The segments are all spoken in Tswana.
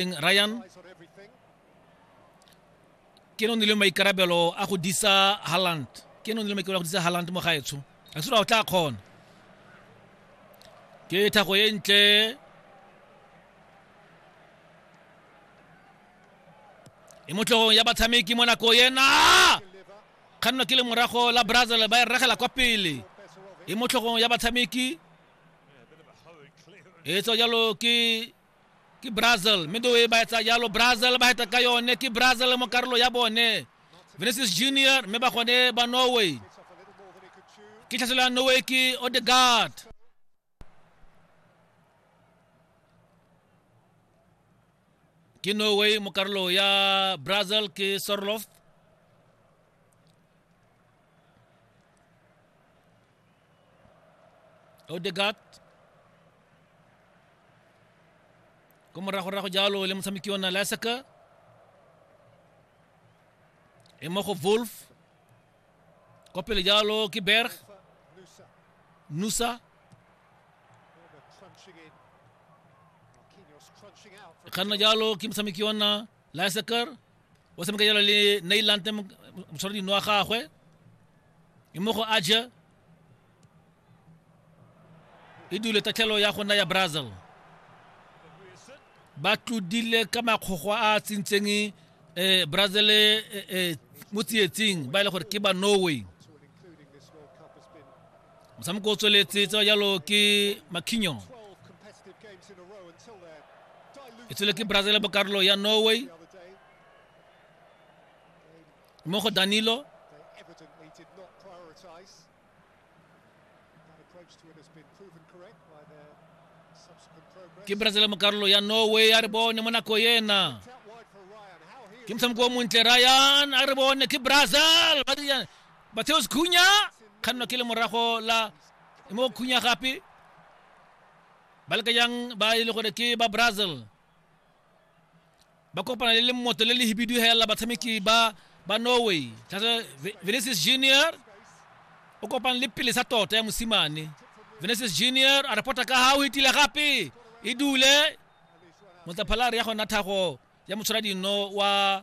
Eng Ryan ke no nile maikarabelo a go disa Haaland ke no nile maikarabelo a go disa Haaland mo gaetsho a sura o tla kgona ke thago e ntle e mo tlhogong ya batshameki mo nako ena kganno ke le morago la brazil ba e regela kwa pele e mo tlhogong ya batshameki e tswa jalo ke ke brazil mme do e ba etsa jalo brazil ba heta ka yone ke brazil mo karolo ya bone vinicius junior mme ba gone ba norway ke tlhaselo ya norway ke odegard ke norway mo karolo ya brazil ke sorloft odegat ko moragorago jalo le motshameki ona lasaka e mo go wolf kwa pele jalo ke berg nusa e kganna jalo ke motshameki ona liseker o tshameka jalo le nailante motshwara dino wa gagwe e mo go aja e dule tatlhelo ya gona ya brazil ba tlodile ka makgogwa a a tsentseng um brazil um mo tsietsing ba e le gore ke ba norway motshameko o tsweletse tsa jalo ke makhinyo e tswele ke brazil ya bokarolo ya norway mo go danilo ke brazil mo karolo ya norway a re bone mo nako ena ke motshameko o montle ryan a re bone ke brazil Mateos Cunha kgannwa ke le morago la mo Cunha gape ba leka jang ba e le gore ke ba Brazil ba kopana le lemoto le le hibidu hela batshameki ba ba Norway tlase Vinicius Junior o kopana le pele sa tota ya mosimane Vinicius Junior a reporta ka ha o hitile gape e dule motlaphalare ya gona thago ya motshwara dino wa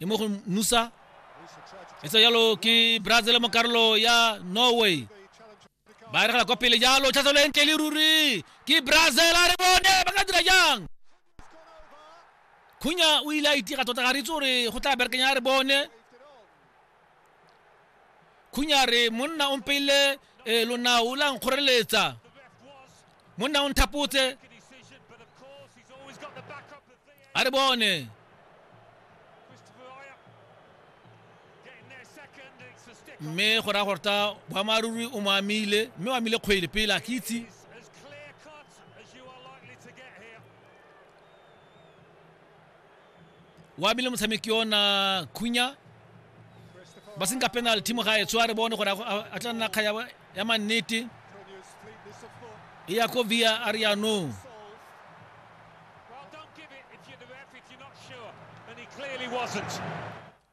e mo go nusa e tse jalo ke brazil mo karolo ya norway ba eregela kwa pele jalo tlhatlhelo e ntle le ruri ke brazil a re bone ba ka dira jang khunya o ile a itira tota ga re itse gore go tla berekanya a re bone khunyare monna o mpeile eh, lonao la nkgoreletsa monna o nthapotse a re bone mme go raya gore ta boammaaruri o mo amile mme o amile kgwele pele a ke itse wa bile motshameki ona khunya ba senka penal team ga e tswa re bone gore a tla nna kga ya mannete e ya ko via ariano